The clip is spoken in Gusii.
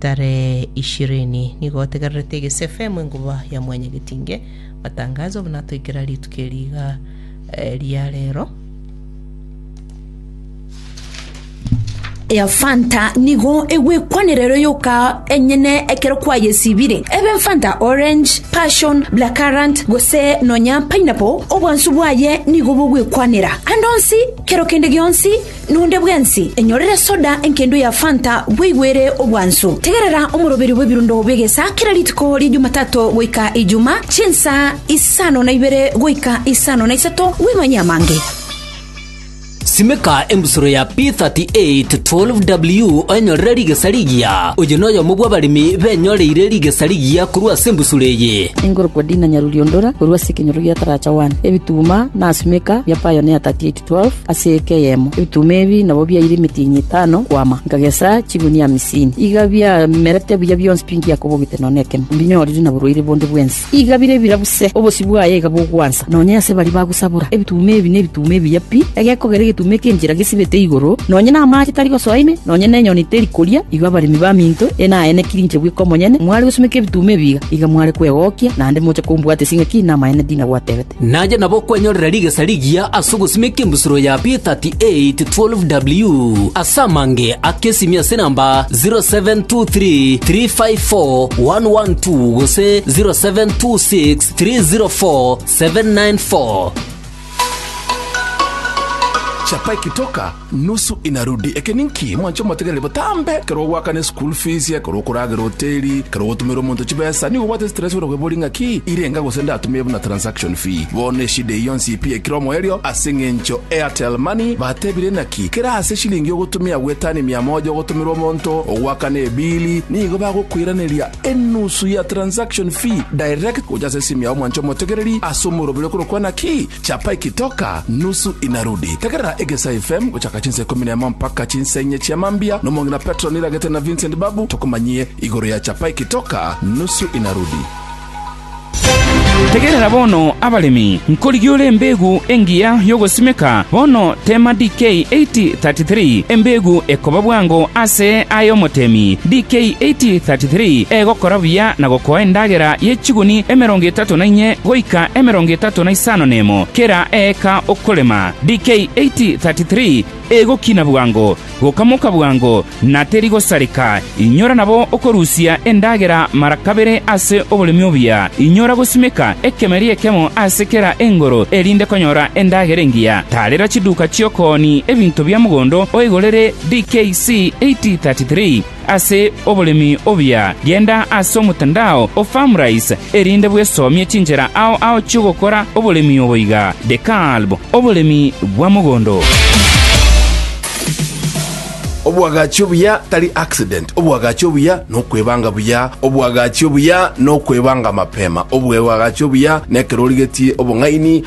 Tare ishirini, nigo otegererete egese FM enkuba ya Mwanyagetinge. Matangazo obo natoikera rituko eri iga eh, ria rero. ya fanta nigo egwekwanerero yoka enyene ekero kwayesibire ebe fanta orange passion black currant gose nonya pineapple obwansu bwaye nigo bogwekwanera ande onsi kero kende gionsi Nonde bwensi enyorere soda enkendo ya Fanta bweigwere obwansu. Tegerera omoroberi bw'ebirundo bi'egesa kera rituko ria Jumatato goika Ijuma, chinsa isano na ibere goika isano na isato, wimanye amange. Simeka embusuro ya P38 12W oenyorere rigesa rigiya. Oyo noyomo bw'abaremi benyoreire rigesa rigiya korwa ase embusuro eye. Enkorokwa Dina Nyaruriondora korwa ase ekenyoro gia Taracha One, ebituma na asimeka bia Pioneer 38W. 12 ase eke eyemo. Ebituma ebi nabo biaire emetienyi etano kwama, nkagesa chigunia amisini. Iga biamerete buya bionsi pi ngiakobogete nonya nekemo, mbinyorire na borwaire bonde bwensi. Iga bire bira buse, obosio bwaye iga bogwansa nonya ase baria bagosabora. Ebituma ebi nebituma ebiya pi, egekogera egetuma ekia enchera gesibete igoro, nonya namache tari gosoa ime, nonya nenyoni teri koria. Igo abaremi baminto ene aye nekiri inche bweka omonyene, mware gosumeka ebituma ebi iga, iga mware kwegokia, naende moche kombwata ase ng'aki namaene ndinagwatebete. Nache nabo kwenyorera rigesa rigiya ase ogosimeka embusuro ya P3812W ase amange ake esimi ase namba 0723354112 gose 0726304794. Chapa ekitoka Nusu inarudi. Eke ninki? Mwanche omotegereri botambe. Ekero ogoakana eschool fees, ekero okoragera hoteli, ekero ogotumera omonto chibesa, nigo obwate stress buna kwebori ng'a ki irenga gose ndatumie buna transaction fee. Bono eshida eye yonsi pi ekire omoerio ase eng'encho Airtel Money batebire naki kera ase eshilingi ogotumia gwetani mia moja ogotumera omonto ogoakana ebili nigo bagokoiraneria enusu ya transaction fee direct gocha ase esimu yao mwanche omotegereri ase omoroberi okorokwa naki Chapa ikitoka nusu inarudi. Tegerera Egesa FM gochaka chinsa ikomi na emo mpaka chinsa inye chia mambia na omong'ina Petro niragete na Vincent Babu tokomanyie igoro ya Chapa ikitoka nusu inarudi. Tegerera bono, abaremi, nkorigia ore embegu engiya y'ogosimeka bono teema DK 8033, embegu ekoba bwango ase aye omotemi. DK 8033 egokora buya na gokoa endagera ye chiguni emerongo etato na inye goika emerongo etato na isano nemo kera eeka okorema, DK 8:33 egokina bwango, gokamoka bwango, na terigosareka, inyora nabo okorusia endagera mara kabere ase oboremi obuya, inyora gosimeka ekemeri ekemo ase kera engoro erinde konyora endagera engiya, tarera chiduka chi'okooni ebinto bia mogondo oigorere, DK C 8:33. Ase oboremi obuya, genda ase omotandao o Farmrise erinde bwesomie chinchera ao ao chi'ogokora oboremi obo iga, The Kalb, Oboremi bwa Mogondo. Obwagachi obuya tari accident, obwagachi obuya nokwebanga buya, obwagachi obuya nokwebanga mapema, obwebwagachi obuya nekerorigetie obong'aini,